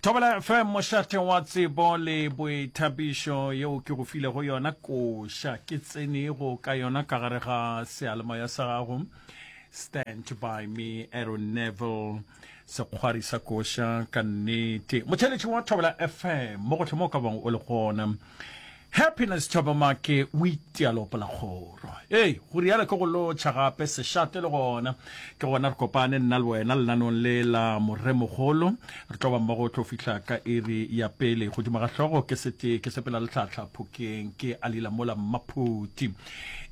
thobela fm mošate wa tsebo le boithapišo yeo ke go file go yona koša ke tsenego ka yona ka gare ga sealemoya sa gago stand by me aron neville sekgwari sa koša ka nnete motheletši wa thobela fm mo gotlhe mo ka bong o le gona Happiness Thabamake o itialo polakgoro. Ee, go rialo ke go lotšha gape sešate le gona. Ke gona re kopane nna le wena lenanong le la Moremogolo. Re tlo ba mmogo tlo fihla ka iri ya pele. Godimo ga hlogo ke sete ke sepela le tlhatlha phokeng ke alila mola mmaphuti.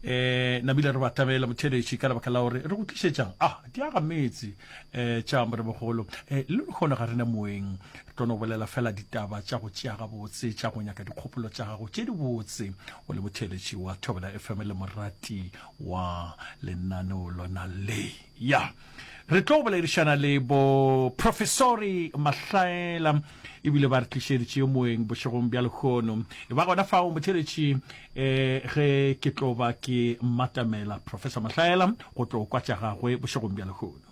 Eh, nabile re ba tlamela motheletši ka lebaka la gore re go tlišetšang. Ah, di aga metse eh tša Moremogolo. Eh, le kgone ga rena moeng. ke tlo no bolela fela ditaba tša go tšea gabotse tša go nyaka dikgopolo tša gago tše dibotse o le motheletši wa thobela fm le morati wa lenaneo lona le ya re tlo boledišana le bo professori mahlaela ebile ba re tlišeditše moeng bošegong bja lekgono e ba gona fao motheletši um eh, ge ke tlo ba ke matamela professor mahlaela go tlo kwa tša gagwe bošegong bja lekgono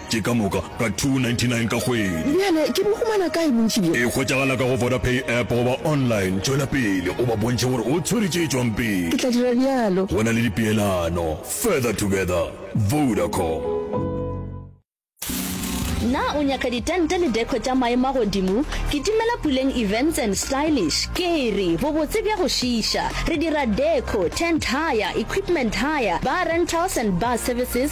Ke ka moka ka 299 ka kgwedi. Bjale ke bo humana kae bontši bjo? E hwetšagala ka go Vodapay app goba online. Tšwela pele o ba bontšhe gore o tshwere tše tšwang pele. Ke tla dira bjalo. Go na le dipeelano. Further together. Vodacom. Na o nyaka ditente le deco tša maemo a godimo? Kitimela Puleng Events and Stylish. Ke re, bobotse bja go šiiša! Re dira deco, tent hire, equipment hire, bar rentals and bar services,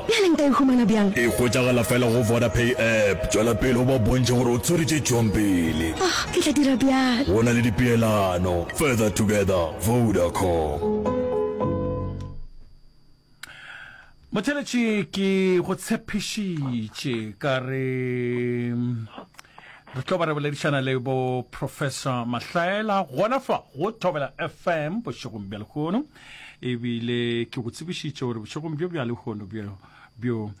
Bjale nka e humana bjang? E hwetšagala fela go Vodapay app. Tšwela pele o ba bontšhe gore o tshwere tše tšwang pele. Oh, ke tla dira bjalo. Go na le dipeelano. Further together, Vodacom. Motheletši, ke go tshepišitše ka re re tlo ba re boledišana le bo Professor Mahlaela gona fa go Thobela FM bošegong bja lehono. ebile ke go tsebišitše gore bošegong bjo bja lehono bjo bjo um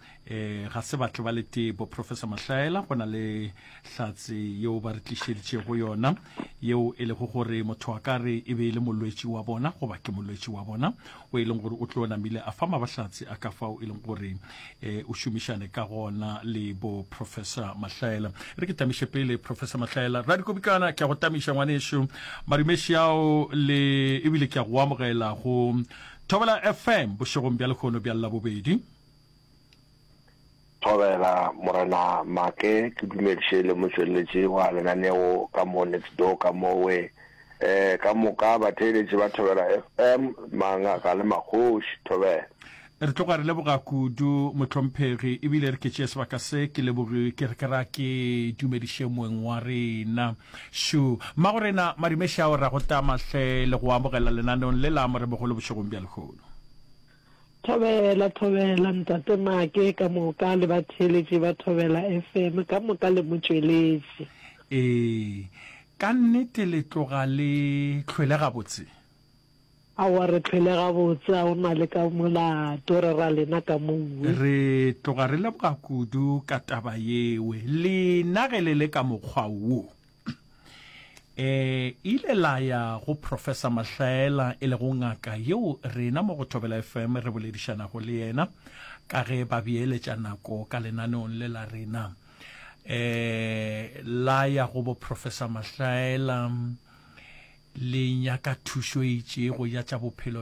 ga se batle ba letee bo professor mahlaela go na le hlatse yeo ba re tlišeditšego yona yeo e lego gore motho a ka re e be e le molwetši wa bona goba ke molwetši wa bona o e leng gore o tlo namile a fa mabahlatse a ka fao e leng gore e, o šomišane ka gona le bo professor mahlaela re ke tamiše pele professor mahlaela ra dikobikana ke a go tamiša ngwanešu madumeši ao le ebile ke a go amogela go thobela fm bošegong bja lekgono bja labobedi thobela morena make ke dumediše le motsweletši wa lenaneo ka mo next door ka mowe eh ka moka batheeletši ba thobela fm mangaka le magoši thobela Re tloga re leboga kudu mohlomphegi ebile re ke tšee sebaka se ke lebogi ke re ke ra ke dumediše moeng wa rena. Šo. Mmagorena Madimešao ra go tama hle le go amogela lenaneong le la Morebogolo bošegong bja lehono. Thobela, thobela Ntate Make ka moka le batheeletši ba Thobela FM ka moka le motšweletši. Ee, ka nnete le tloga le hlwele gabotse. Aowa re phele gabotse a o na le ka molato re ra lena ka mowe. Re tloga re leboga kudu ka taba yewe lena ge le le ka mokgwa wo. E ile la ya go Professor Mahlaela e lego ngaka yeo rena mo go Thobela FM re boledišanago le yena ka ge ba beeletša nako ka lenaneong le la rena. eh la ya go bo professor mahlaela le nyaka thušo e itšego ya tša bophelo